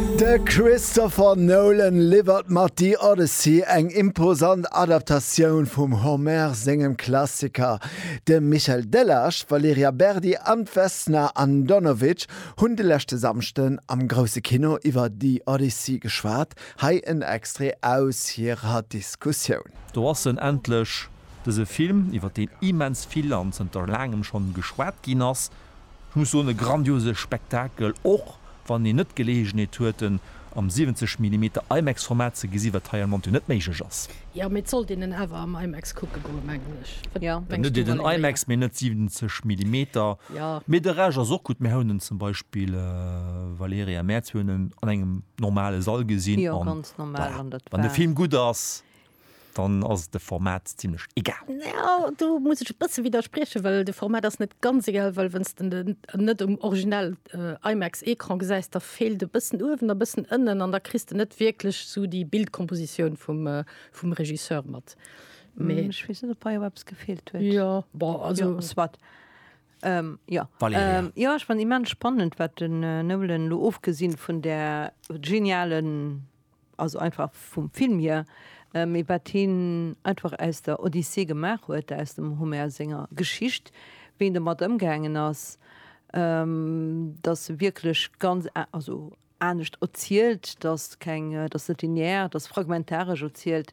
De Christopher Nolan liwwert mat The Odyssey eng imposant Adaptatioun vum Homer sengem Klassiker. De Michel Delage, d'Valerija Berdi an d'Vesna Andonovic hunn de leschte Samschden am Grousse Kino iwwer The Odyssey geschwat. Hei en Extrait aus hirer Diskussioun. Do ass en endlech, dëse Film, iwwer deen immens vill an zënter laangem schonn geschwat ginn ass. Ech muss soen, e grandiose Spektakel, och wann een net d'Geleeënheet huet en am 70 Millimeter IMAX Format ze gesi wat hei am Monté net méiglech ass. Jo, mee et sollt een en awer am IMAX kucke goen, mengen ech. Wat mengs du, Valérie? Den IMAX, mee net 70 Millimeter. Mee de Rescht ass och gutt. Mir hauen en zum Beispill, Valérie a Mäerz, mir hunn en an engem normale Sall gesinn an voilà, wann de Film gutt ass. dann ass et de Format zimlech egal. Ja, do muss ech e bësse widerspriechen, well de Format ass net ganz egal, well wann s de den net um original äh, IMAX-Ecran gesäis, da feelt e bëssen uewen a bëssen ënnen an da kriss de net wierklech esou déi Bildkompositioun vum, äh, vum Regisseur mat. Mee, mm, ech wees net op bei op eppes gefehlt huet ja, bon, also, ja, wat ähm, ja. Ähm, ja ech fan immens spannend wat den äh, Nolan lo ofgesinn vun der genialen also einfach vum Film hier, mee wat hien einfach aus der Odyssee gemaach huet, aus dem Homer senger Geschicht, wéi en domat ëmgaangen ass, dass se wierklech ganz, also anescht erzielt, dass keng, dass net linear, dass fragmentaresch erzielt.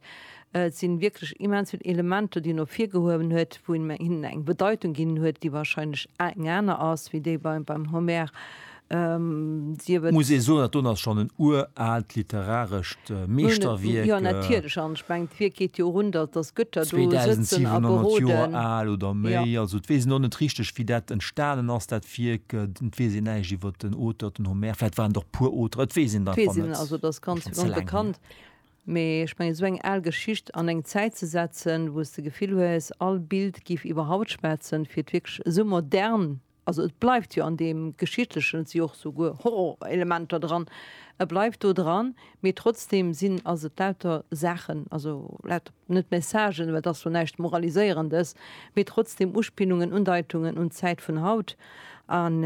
Et si wierklech immens vill Elementer, déi en ervirgehuewen huet, wou en hinnen eng Bedeitung ginn huet, déi wahrscheinlech eng aner ass wéi déi beim Homer. Muss ee soen, dat do ass schonn en uraalt literarescht Meeschterwierk. 2.700 Joer al oder méi. Also et weess een och net richteg, wéi dat entstanen ass, dat Wierk. Et weess een näischt iwwer den Auteur, den Homer. Vläicht waren et och puer Auteren, et weess een et einfach net. Also et ass ganz onbekannt. Mee ech mengen, esou eng al Geschicht an eng Zäit ze setzen, wou s de d'Gefill hues, all Bild géif iwwer Haut schwätzen, fir et wierklech esou modern Also et bleift jo an deem Geschichtlechen, et si jo och souguer Horrorelementer dran, e bleift do dran, mee trotzdeem sinn, ass et lauter Saachen, also lauter, net Messagen, well et ass jo näischt Moraliséierendes, mee trotzdeem Uspillungen, Undeitungen un d'Zäit vun haut. An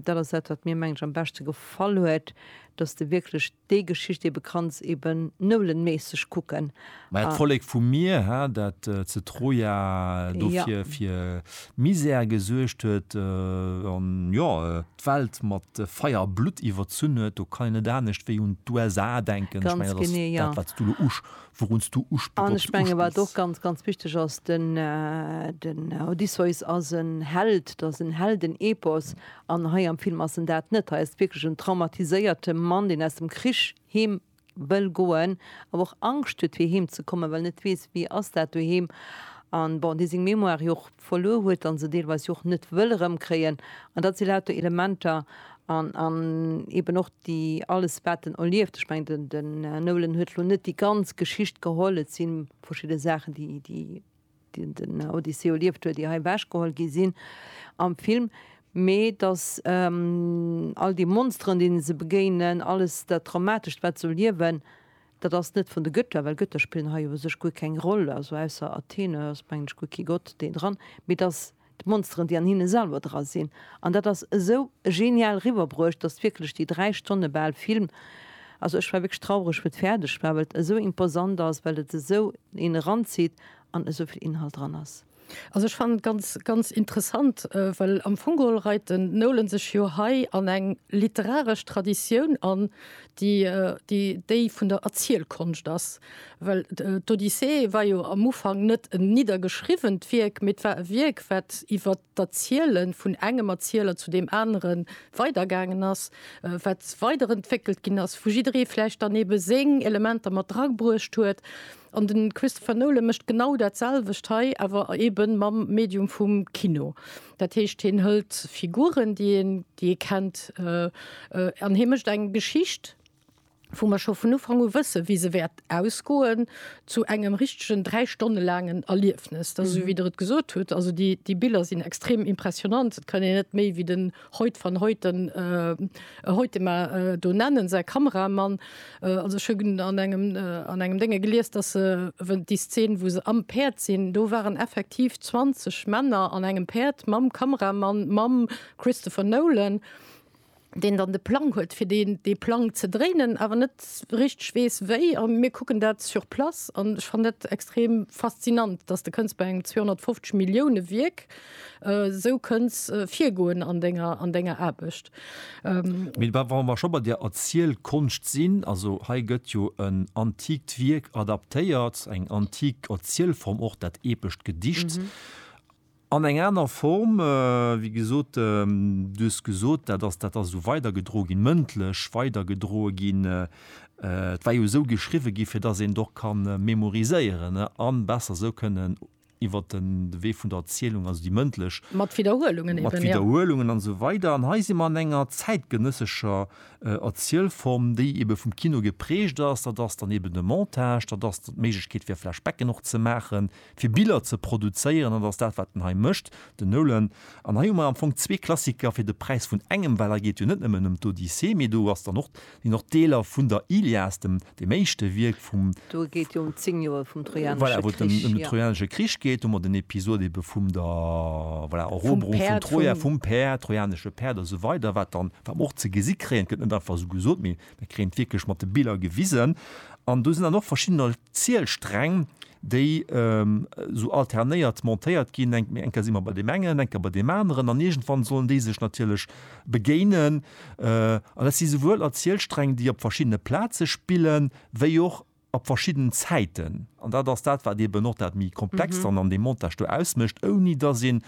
dat ass dat, wat mir, mengen ech, am beschte gefall huet, dass de wierklech. Déi Geschicht eben kanns eben noulenméisseg kucken. Mä et Vollek vu mir, hä, dat ze Troja dofir fir Misär gesuergt huet an, jo, d'Welt mat Feier a Blutt iwwerzunn huet, do kann een net anescht wéi un d'USA denken. Ech mengen, dat ass dat, wat s du elo usch, wourun s du usch, worauf s du uspills. An ech mengen, wat och ganz, ganz wichteg ass, den, den Odysseus ass en Held, dat ass en Heldenepos. An hei am Film ass en dat net. Hei ass et wierklech en traumatiséierte Mann, deen aus dem Krich heem wëll goen, awer och Angscht huet fir heem ze kommen, well en net weess, wéi ass dat doheem. An bon, dee seng Mémoire jo och verluer huet an se deelweis jo och net wëll erëmkréien. An dat si lauter Elementer an an eben och déi alles wat en erlieft. Ech mengen den Nolan huet elo net déi ganz Geschicht geholl, et si verschidde Saachen déi déi. déi den Odysseus erlieft huet, ier hei ewechgeholl gi sinn am Film, mee datt all déi Monsteren, deene se begéinen, alles dat Traumatescht, wat se erliewen, dat ass net vun de Götter, well Götter spillen hei u sech guer keng Roll, also ausser Athene ass, mengen ech, guer kee Gott deen dran, mee datt d'Monsteren déi an hinne selwer dra sinn, an dat ass esou genial riwwerbruecht, dass wierklech déi 3 Stonne bal Film, also ech war wierklech traureg wou et fäerdeg war, well et esou imposant ass, well et esou een eranzitt an esou vill Inhalt dran ass. Also ech fannen et ganz, ganz interessant, well am Fong geholl reit den Nolan sech jo hei an eng literaresch Traditioun an, déi déi vun der Erzielkonscht ass, well d'Odyssee war jo am Ufank net en niddergeschriwwent Wierk, mee et war e Wierk, wat iwwer d'Erziele vun engem Erzieler zu deem anere weidergaangen ass, wat weiderentwéckelt ginn ass, wou jidderee vläicht dann eebe seng Elementer mat drabruecht huet. An de Christopher Nolan mécht genau dat selwecht hei, awer eebe mam Medium vum Kino. Dat heescht hien hëlt Figuren, déi een, déi ee kennt, an hie mécht eng Geschicht, wou mer scho vun Ufank u wësse wéi se wäert ausgoen, zu engem richtegen dräi Stonne laangen Erliefnes. Dat ass esou wéi Der et gesot hutt. Also déi Biller sinn extrem impressionant. Et kann een net méi wéi den Hoyt van Hoyten. E Hoytema do nennen, säi Kameramann. Also ech hunn an engem an engem Dénge gelies, datt se wou déi Szen, wou se am Päerd sinn, do waren effektiv 20 Männer an engem Päerd mam Kameramann, mam Christopher Nolan, deen dann de Plang huet fir deen dee Plang ze dréinen, awer net richteg weess wéi. A mir kucken dat sur place an ech fannen dat extrem faszinant, datt de kënns bei engem 250 Millioune Wierk, Esou kënns virgoen an denger an denger Aarbecht. Mee wa wa mer scho bei der Erzielkonscht sinn, also hei gëtt jo en antikt Wierk adaptéiert, eng antik Erzielform och, dat epescht Gedicht, an eng aner Form, wéi gesot, du hues gesot, dat ass dat ass esou weidergedroe ginn, mëndlech weidergedroe ginn, et war jo esou geschriwwe gi fir datt een et och ka memoriséieren an besser esou kënnen Iwwer de Wee vun der Erzielung, also déi mëndlech. Mat Widderhuelungen eben, jo. Mat Widderhuelungen an esou weider. An hei si mer an enger zäitgenëssescher Erzielform, déi ebe vum Kino geprägt ass. Dat ass dann eben de Montage, dat ass d'Méiglechkeet fir Flashbacken och ze maachen, fir Biller ze produzéieren. Dat ass dat, wat en hei mécht, den Nolan. An hei hu mer am Fong zwee Klassiker fir de Präis vun engem, well hei geet jo net nëmmen ëm d'Odyssee, mee do ass dann och deen och Deeler vun der Ilias, dem dem éischte Wierk vum. Do geet et jo ëm zéng Joer vum Trojanesche Krich. Voilà, wou et ëm den Trojanesche Krich geet, hu mer den Episod ebe vum der, voilà, Eroberung vun Troja, vum Päerd, trojanesche Päerd a sou weider, wat dann, wat mer och ze gesi kréien, et gëtt net einfach esou gesot, mee mir kréien et wierklech mat de Biller gewisen. An do sinn dann och verschiddener Zielsträng, déi esou alternéiert montéiert ginn, eng eng Kéier si mer bei deem engen, eng Kéier bei deem aneren, an iergendwann sollen déi sech natierlech begéinen. An dat si souwuel als Zielsträng, déi op verschiddene Plaze spille wéi och op verschiddenen Zäiten. An dat ass dat, wat eeben och dat méi Komplext dann an deem Montage do ausmécht, ouni datt een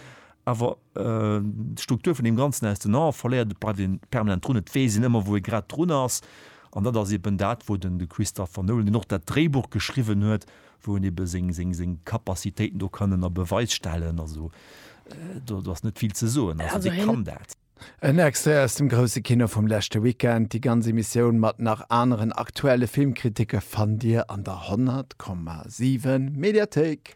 awer d'Struktur vun deem Ganzen aus den Ae verléiert, et bleift ee permanent drun, et weess een ëmmer, wou ee grad drun ass. An dat ass eben dat, wou den, de Christopher Nolan, deen och dat Dréibuch geschriwwen huet, wou en ebe seng, seng, seng Capacitéiten do kann ënner Beweis stellen. Also do, do ass net vill ze soen. Also dee kann dat. En Extrait aus dem grousse Kino vum leschte Weekend. Déi ganz Emissioun mat nach aneren aktuelle Filmkriticke fannt Dir an der 100,7 Mediathéik.